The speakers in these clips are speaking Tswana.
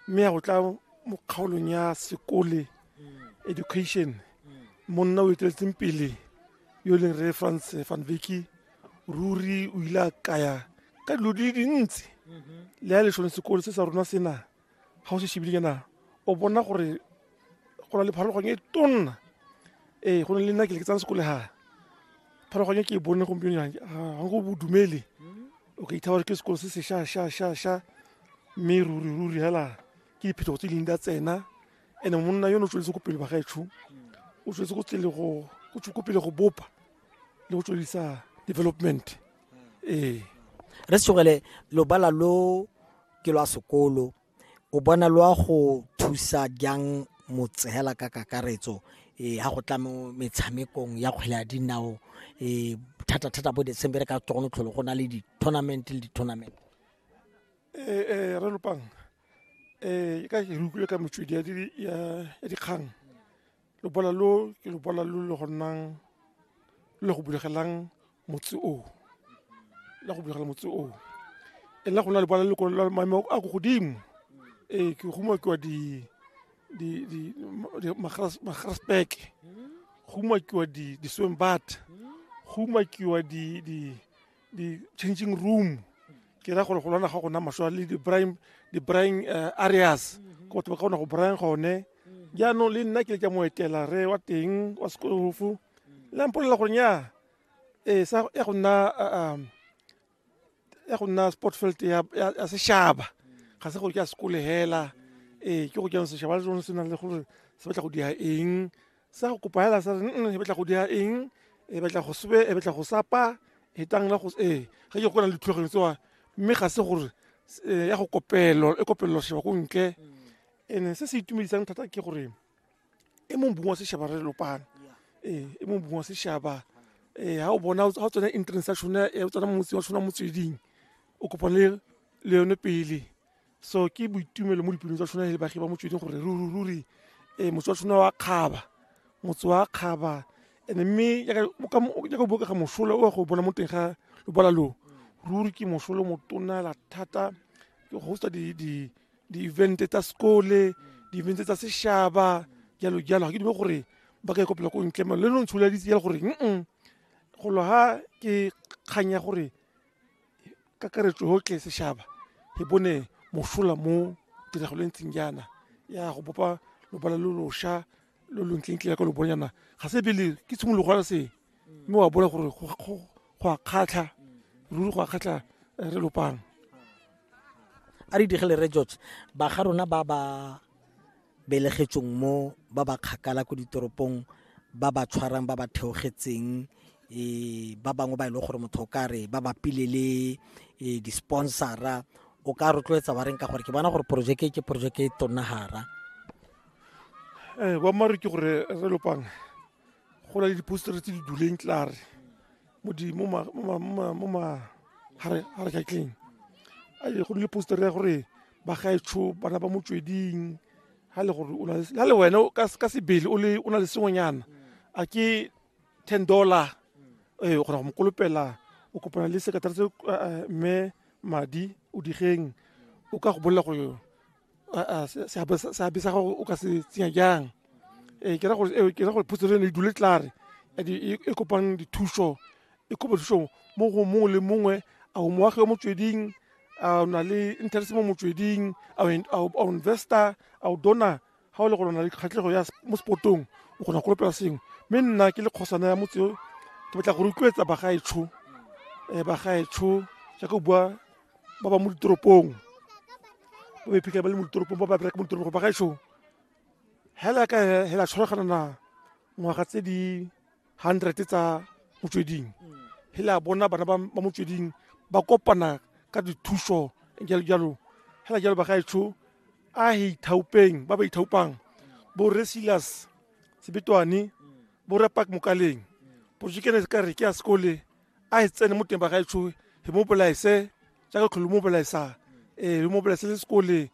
mme ya go tla mo kgaolong ya sekole education monna o eteletseng pele yo e leng re franc van veki ruri o ile a kaya ka dilo di le dintsi le ya lesone sekolo se sa rona sena ga o se shebile kana o bona gore go na le pharologong e tonna ee go ne le nna ke le ke tsang sekole ga pharologong e ke e bone gompieno ga go bodumele o ka ithabala ke sekolo se se sha sha sha sha mme ruri ruri hela ke diphetogo tse ding da tsena ene monna yone o tsweletse ko pele bagaetsho o tsweletse ko tsele go o tswe ko pele go bopa le go tswelisa development ee re segele lobala lo ke lwa sekolo o bona lo a go thusa jang motshela ka kakaretso um ha go tla mo metshamekong ya kgwele ya dinao um thata-thata bo december ka tsone tlholo go na le di-tournament le di-tournament ee eh, eh, re lopang um eh, ka ke re utlwile ka metswedi ya dikgang lobola lo ke lobola lo le go nnang le go bulegelang motse oo la go bulegela motse oo e nna go na lobola le ko la maemo a ko godimo ee ke go umakiwa di di di magrasbeke go umakiwa di di swembat go umakiwa di di di-changing room ke ra gore go lwana ga gona maswa le di-brying eh, areas mm-hmm. ko batho ba kgona go bryan gone mm-hmm. jaanong le nna ke le ka mo etela re wa teng wa sekolofu mm-hmm. le mpolela gore nya ee sa ya go nna eh, um, ya go nna sport field ya sešaba ga se gore ke a sekolegela ee ke go ke sešaba le sone se nang le gore se batla go dia eng sa go kopa hela sa re nne e batla go dira eng e batla go sebe e batla go sapa e tang la go e ga ke gona le tlhogo tsoa mme ga se gore eh, ya go kopelo e kopelo sheba go nke ene se se itumedisang thata ke gore e mong bongwa se sheba re lopana eh e mong bongwa se shaba eh ha o bona ha tsone entrance ya shona e tsona motsi wa shona motsweding o kopane le yone pele so ke boitumelo mo dipelong tsa tshwana le bagi ba motsweding gore ruri um motse wa tshwana wa kgaba motse wa kgaba and mme yaka o bokega mosola o ya go bona mo teng ga lobala loo ruri ke mosolo motonela thata ke hosta di-event tsa sekole di-event tsa sešaba jalo jalo ga ke dume gore ba ka ikopela ko ntle le no ntsholaditse jalo gore mm golo ga ke kgang ya gore kakaretso yotlhe sešhaba e bone mosola mo tiragalo e ntseng jaana ya go bopa lobala lo losha lo lo ntlentle ya ka lo bonjana ga se pele ke tshimologo ya se mme wa bona gore go- go go a kgatlha ruri go a kgatlha eh, re lopang a re digele re george ba ga rona ba ba belegetsweng mo ba ba kgakala ko ditoropong ba ba tshwarang ba ba theogetseng um ba bangwe ba e leng gore motho o ka re ba bapile le um di-sponsora o ka rotloetsa ba reng ka gore ke bona gore porojeke ke porojeke e tonnagara um boammaaruri ke gore re lopang go na le dipostere tse di duleng tlare mo magatleng go nne poster ya gore bagaetsho bana ba motsweding ha le gore o na le ha le wena o ka ka sebele o le o na le sengwenyana a ke 10 dollar eh o kgona go mo kolopela o kopana le sekatara se mme madi o digeng o ka go bolela gore seabe sa gago o ka se tsenya jang ee ke ra gore ee, ke ra gore phutso le ne e dule tlare and e e kopang dithuso e kopa thuso mo go mongwe le mongwe a o moagi o motsweding a o na le interest mo motsweding a o investor a o dona ga o le gore o na le kgatlhego ya mo spotong o kgona go kolopela sengwe mme nna ke le kgosana ya motse o ke batla go rotloetsa bagaetsho um bagaetsho jaaka o bua ba ba mo ditoropong ba ba iphitlhela ba le mo ditoropong ba ba bereka mo ditoropong gore bagaetsho hela ka hela tshwaragana na ngwaga tse di 100 tsa motsweding he la bona bana ba ba motsweding ba kopana ka dithuso jalo jalo hela jalo bagaetsho a he ithaupeng ba ba ithaupang bo re silas sebetwane bo re pak mokaleng porojekene se ka re ke ya sekole a e tsene mo teng ba gaetsho he mo bolaese jaaka tlholo mo bolaesang ee mo bolaese le sekoleng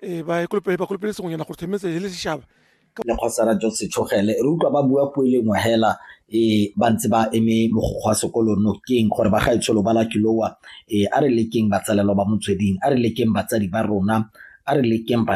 ee ba ekolopele ba kolopele sengwenyana gore themetse he le sešaba lekgosana jo setshogele re utlwa ba bua puo e lengwe hela um ba ntse ba eme mogokgo wa sekolo nokeng gore ba gaetsholo ba lakiloa um a re lekeng batsalelwa ba motsweding a re lekeng batsadi ba rona a re lekeng bana